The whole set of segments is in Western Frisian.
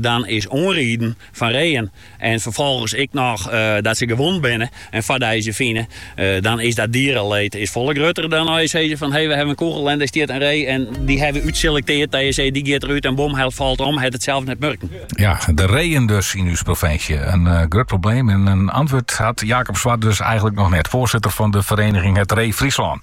Dan is oanrieden fan reeën en ferfolgens ek noch dat se gewond binne en ferdijst se fine, dan is dat diereleed is folle grutter dan as je sizze fan hey we hawwe in kûgel en dêr stiet in ree en dy hawwe we útselekteard dat je sizze dy giet derút en bom hy falt om, hat it sels net murken. Ja, de reeën dus yn ús provinsje. In grut probleem en in antwurd hat Jacob Swart dus eigenlik noch net. Foarsitter fan de fereniging Het Ree Friesland.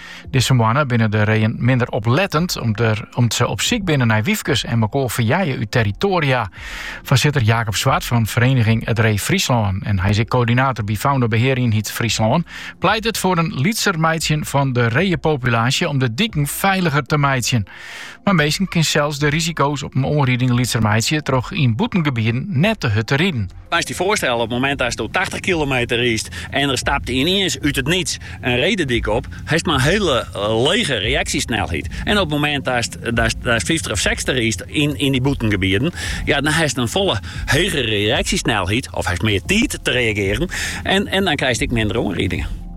Dizze moanne binne de reeën minder oplettend om't se op syk binne nei wyfkes en mekoar ferjeie út territoaria. Foarsitter Jacob Swart fan Vereniging Het Ree Fryslân en hy is ek koördinator by Faunabehearienheid Fryslân, pleitet foar in lytser meitsjen fan de reeëpopulaasje om de diken feiliger te meitsjen. Mar minsken kinne sels de risiko's op in oanriding lytser meitsje troch yn bûtengebieden net te hurd te riden. Moatst dy foarstelle, op it momint datsto tachtich kilometer riist en der stapt yniens út it niets in ree de dyk op, hast mar in hiele lege reaksjesnelheid. En op it momint datst fyftich of sechstich riist yn dy bûtengebieden, ja, dan hast in folle hegere reaksjesnelheid of hast mear tiid te reagearen en dan krijst ek minder oanridingen.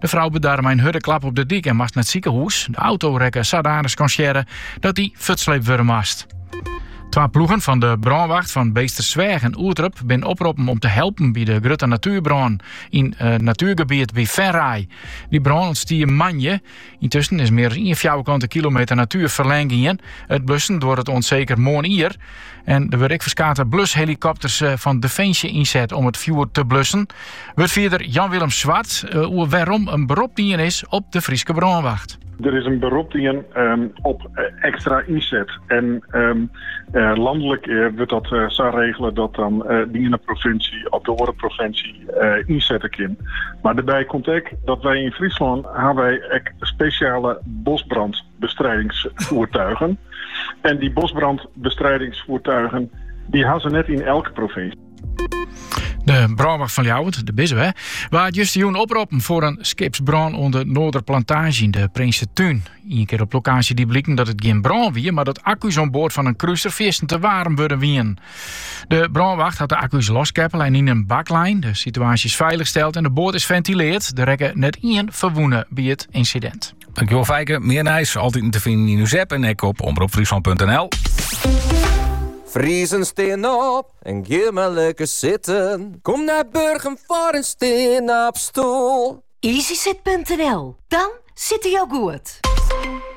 De frou bedarre mei in hurde klap op de dyk en moast nei it sikehûs. De auto rekke sadanich skonsearre dat dy fuortsleept wurde moast. Twa ploegen fan de brânwacht fan Beetstersweach en Oerterp binne oproppen om te helpen by de grutte natuerbrân yn natuergebiet by Venray. Dy brân ûntstie moandei Yntusken is mear as ien fjouwerkante kilometer natuer ferlern gien. It blussen duorret oant seker moarnier. En der wurde ek ferskate blushelikopters eh, fan Defensje ynset om it fjoer te blussen. Wurdfierder Jan-Willem Zwart eh, oer wêrom in berop dien is op de Fryske brânwacht. Der is in berop dien ehm, op eh, ekstra ynset. En ehm, landelik wurdt dat sa regele dat dan de iene provinsje of de oare provinsje ynsette kin. Mar dêrby komt ek dat wy yn Fryslân ha wy ek spesjale bosbrandbestrijdingsvoertuigen. En dy bosbrandbestrijdingsvoertuigen dy ha se net yn elke provinsje. De brânwacht fan Ljouwert, de BISW, waard justerjoen oproppen foar in skipsbrân oan de Noarderplantaazje yn de Prinsetún. Ien kear op lokaasje die bliken dat it gjin brân wie, mar dat akku's oan board fan in kruser te waarm wurden wiene. De brânwacht hat de akku's loskeppele en yn in bak lein. De situaasje is feilich steld en de boat is fentilearre. Der rekke net ien ferwûne by it ynsidint. Tankewol Feike. Mear nijs altyd te finen yn ús app en ek op omropfryslan.nl. Friezen stean op en gean mar lekker zitten. Kom nei Burgum foar in stean-op-stoel. Easyzit.nl, dan zit hij al goed.